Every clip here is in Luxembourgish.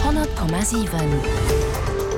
100,7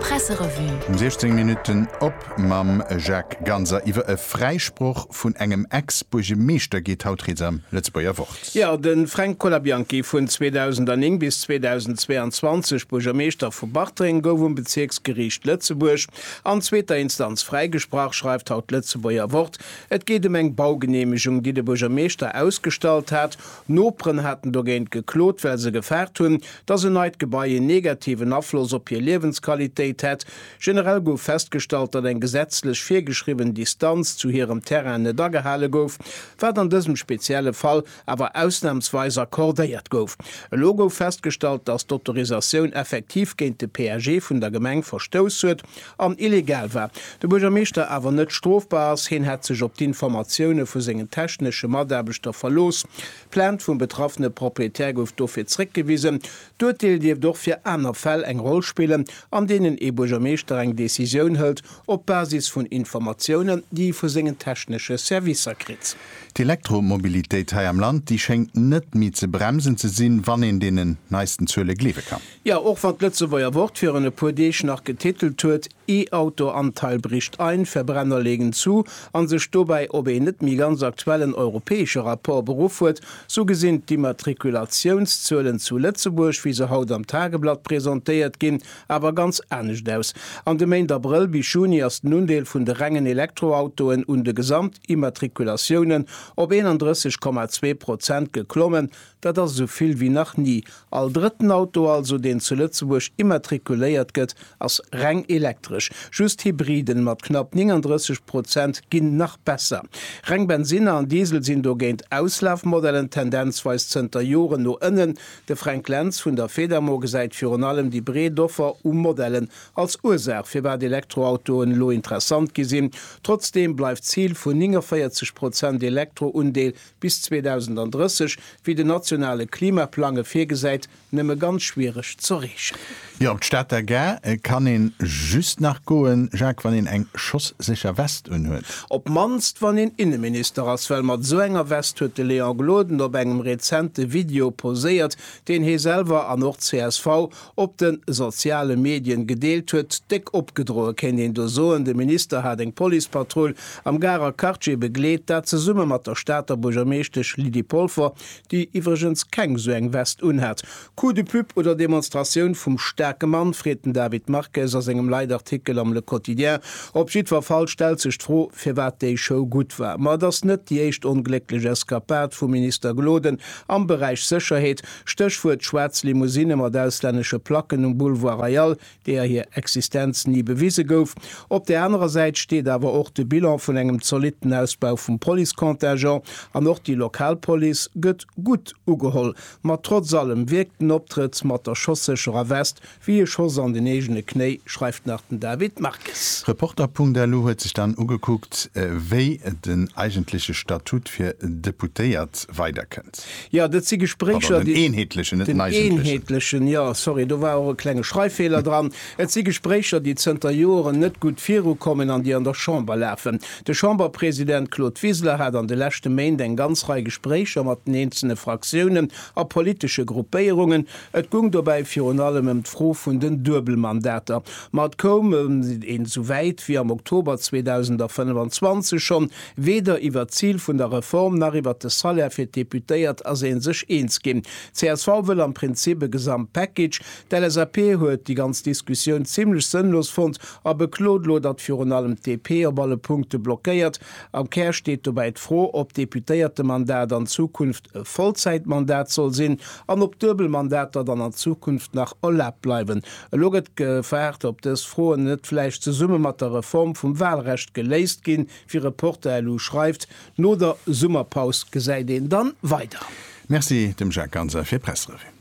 Presserevue. Um 16 Minutten op mam Jacques Ganser. Iwwer e Fräisproch vun engem Ex-Buergemeeschter geet haut rieds am Lëtzebuerger Wort. Jo, de Fränk Colabianchi, vun 2009 bis 2022 Buergermeeschter vu Bartreng, gouf um Bezierksgeriicht Lëtzebuerg an zweeter Instanz fräigesprach, schreift haut d'Lëtzebuerger Wort. Et geet ëm eng Baugeneemegung, déi de Buergermeeschter ausgestallt hat, Noperen haten dogéint geklot, well se gefaart hunn, dass en neit Gebai en negativen Afloss op hir Liewensqualitéit hätt. Generell gouf festgestallt, datt eng gesetzlech virgeschriwwen Distanz zu hirem Terrain net agehale gouf, wat an dësem spezielle Fall awer ausnamsweis accordéiert gouf. Elo gouf festgestallt, dass d'Autorisatioun effektiv géint de PAG vun der Gemeng verstouss huet. an illegal war, de Buergermeeschter awer net strofbar ass, hien hätt sech op d'Informatioune vu sengen technesche Mataarbechter verlooss. D'Plainte vum betraffene Proprietär gouf dofir zréckgewisen. D'Urteel dierft och fir aner Fäll eng Roll spillen, an deenen ee Buergermeeschter eng Decisioun hëlt op Basis vun Informatiounen, déi e vu sengen technesche Servicer kritt. D'Elektromobilitéit hei am Land, déi schéngt net méi ze bremsen ze sinn, wann een deenen neisten Zuele gleewe kann. Jo, och wann d'Lëtzebuerger Wort virun e puer Deeg nach getitelt huet, E-Auto-Anteil bricht ein, Verbrenner legen zu an sech dobäi op een net méi ganz aktuellen europäesche Rapport beruff huet, sou gesinn d'Immatrikulatiounszuelen zu Lëtzebuerg, wéi se haut am Tageblatt presentéiert ginn, awer ganz anescht aus. An de Méint Abrëll bis Juni ass den Undeel vun de rengen Elektroautoen un de Gesamtimmatrikulatiounen op 31,2 Prozent geklommen, Dat ass esou vill wéi nach ni. All drëtten Auto also, deen zu Lëtzebuerg immatrikuléiert gëtt, ass reng elektresch. Just Hybriden mat knapp 39 Prozent ginn nach besser. Reng Bensinner an Diesel sinn dogéint Auslafmodellen, tendenzweis zënter Joren no ënnen. De Fränk Lentz vun der Fedamo gesäit virun allem déi breet Offer u Modellen als Ursaach, firwat Elektroautoen elo interessant gi sinn. Trotzdeem bleift d'Zil vun 49 Prozent Elektro-Undeel bis 2030, wéi den nationale Klimaplang e virgesäit, nëmme ganz schwiereg z'erreechen. Jo, op d'Stater Gare kann een just nach goen, Jacques, wann een eng schosssécher West unhuet. Op mannst wann een Inneminister ass, well mat esou enger West huet de Léon Gloden op engem rezente Video poséiert, deen hee selwer an och csv op de soziale Medien gedeelt huet, déck opgedroe kéint een do soen. De Minister hat eng Policepatrull am Garer Quartier begleet, dat zesumme mat der Stater Buergermeeschtesch Lydie Polfer, déi iwwregens keng esou eng Vest unhat. Coup de pub oder Demonstratioun vum staarke Mann, freet den David Marques a sengem Leitartikel am Le Quotidien. Op jiddwer Fall stellt sech d'Fro, firwat déi Show gutt war. Ma et ass net déi éischt onglécklech Eskapad vum Minister Gloden am Beräich Sécherheet. Stéchwuert schwaarz Limousinne mat auslännesche Placken um Boulevard Royal, deeër hir Existenz ni bewise gouf. Op där anerer Säit steet awer och de Bilan vun engem zolitten Ausbau vum Policecontingent. An och déi lokal Police gëtt gutt ugeholl. Ma trotz allem wierkt den Optrëtt mat der schossécherer West Wéi e Schoss an den eegene Knéi, schreift nach den David Marques. Reporter.lu huet sech dann ugekuckt, wéi den eigentleche Statut fir Deputéiert weiderkënnt. Jo, dat si Gespréicher, déi. Pardon, den eenheetlechen, net den eigentlechen. Den eenheetlechen, jo, sorry, do war och e klenge Schreiffeeler dran. Et si Gespréicher, déi zënter Joren net gutt virukommen an déi an der Chamber lafen. De Chamberpresident Claude Wiseler hat an de leschte Méint eng ganz Rei Gespréicher mat den eenzele Fraktiounen a politesche Gruppéierungen, Et gung dobäi virun allem ëm d'Fro vun den Duebelmandater. Ma et koum een esou wäit wéi am Oktober 2025 schonn. Weder iwwert d'Zil vun der Reform nach iwwert de Salaire fir d'Deputéiert ass ee sech eens ginn. Csv wëll am Prinzip e Gesamtpackage. D'LSAP huet déi ganz Diskussioun zimmlech sënnlos fonnt a beklot elo, datt virun allem d'DP op alle Punkte blockéiert. Am Kär steet dobäi d'Fro, ob d'Deputéiertemandat an Zukunft e Vollzäitmandat soll sinn an ob duebel Mandater dann an Zukunft nach erlaabt bleiwen. Elo gëtt gefaart, ob dës Froen net vläicht zesumme mat der Reform vum Wahlrecht geléist ginn. Wie Reporter lu schreift, No der Summerpaus gesäit een dann weider. Merci dem Jacques Ganser fir d'Pressrevue.